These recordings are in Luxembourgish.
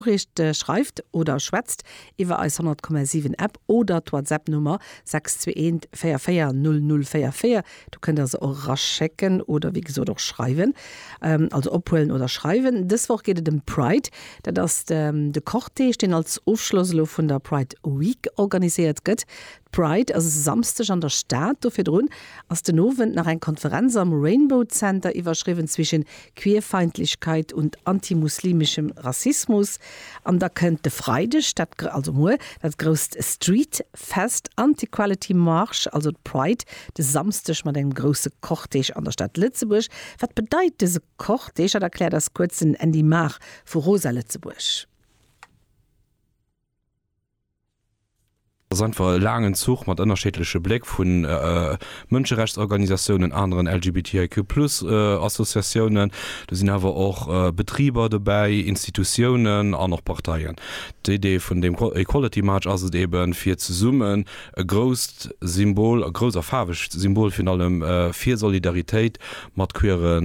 D'Noriicht schreift oder schwätzt iwwer eis 100,7 App oder d'Whatsapp-Nummer 621440044. Do kënnt der se och eraschécken oder wéi gesot och schreiwen, also ophuelen oder schreiwen. Dës Woch geet et ëm d'Pride. Dat ass de Cortège, deen als Ofschloss elo vun der Pride Week organiséiert gëtt. D'Pride ass e Samsdeg an der Stad. Do virdrun ass den Owend nach eng Konferenz am Rainbow Center iwwerschriwwen zwischen Queerfeindlechkeit und antimuslimischem Rassismus an da kënnt de Freideg dat, also muer, dat grousst Street Fest an d'Equality March, also d'Pride, de Samsdeg mat engem grousse Cortège an der Stad Lëtzebuerg. Wat bedeit dëse Cortège? Dat erkläert eis kuerz den Andy Mahr vu Rosa Lëtzebuerg. Et ass einfach e laangen Zuch mat ënnerscheedleche Bléck vu Mënscherechtsorganisatiounen, aneren LGBTIQ plus Associatiounen. Do sinn awer och Betriber dobäi, Institutiounen an och Parteien. D'Idee vun deem Equality March ass et eeben, fir zesummen E grousst Symbol, e grousst a faarwegt Symbol virun allem, fir Solidaritéit mat queere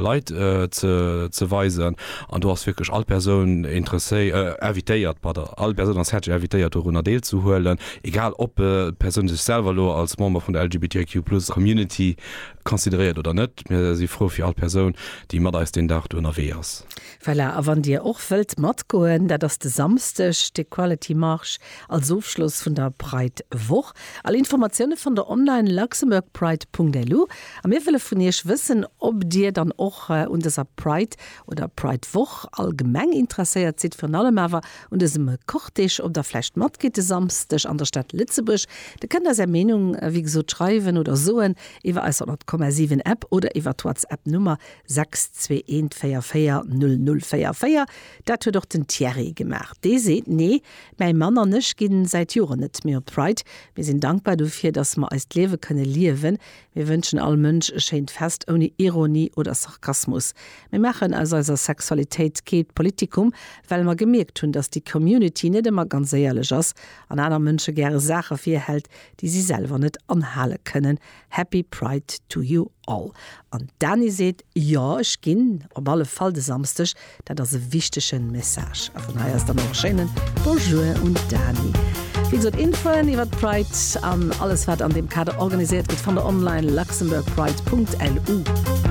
Leit ze weisen. An do ass wierklech all Persoun invitéiert, pardon, all Persoun ass häerzlech invitéiert dorunner deelzehuelen, egal ob d'Persoun sech selwer elo als Member vun der LGBTIQ plus Community consideréiert oder net. Mir si frou fir all Persoun, déi mat eis deen Dag do ënnerwee ass. Voilà, a wann Dir och wëllt matgoen, dat ass de Samsdeg de Quality Marche als Ofschloss vun der Pride Woch. All Informatioune fannt der online, luxembourgpride.lu. A mir wëlle vun Iech wëssen, ob Dir dann och un dëser Pride oder Pride Woch allgemeng interesséiert sidd, virun allem awer un dësem Cortège, ob der vläicht matgeet de Samsdeg an der Stad Lëtzebuerg. Der kënnt eis Är Meenung, wéi gesot, schreiwen oder soen iwwer eis 100,7 App oder iwwer d'Whatsapp Nummer 6214400044, dat huet och den Thierry gemaach. Dee seet, Nee, mäi Mann an ech ginn säit Joren net méi op d'Pride. Mir sinn dankbar dofir, datt mer eist Liewe kënne liewen. Mir wënschen all Mënsch e schéint Fest ouni Ironie oder Sarkasmus. Mir maachen aus eiser Sexualitéit keet Politikum, well mer gemierkt hunn, datt déi Community net ëmmer ganz éierlech ass an aner Mënsche gäre Saache virhält, déi si selwer net anhale kënnen. Happy Pride to you all. An d'Dani seet, Jo, ech ginn op alle Fall de Samsdeg, dat ass e wichtege Message. A vun hei aus dann och e schéinen Bonjour un d'Dani. Wéi gesot, Infoen iwwert d'Pride an alles wat an deem Kader organiséiert gëtt, fannt der online, luxembourgpride.lu.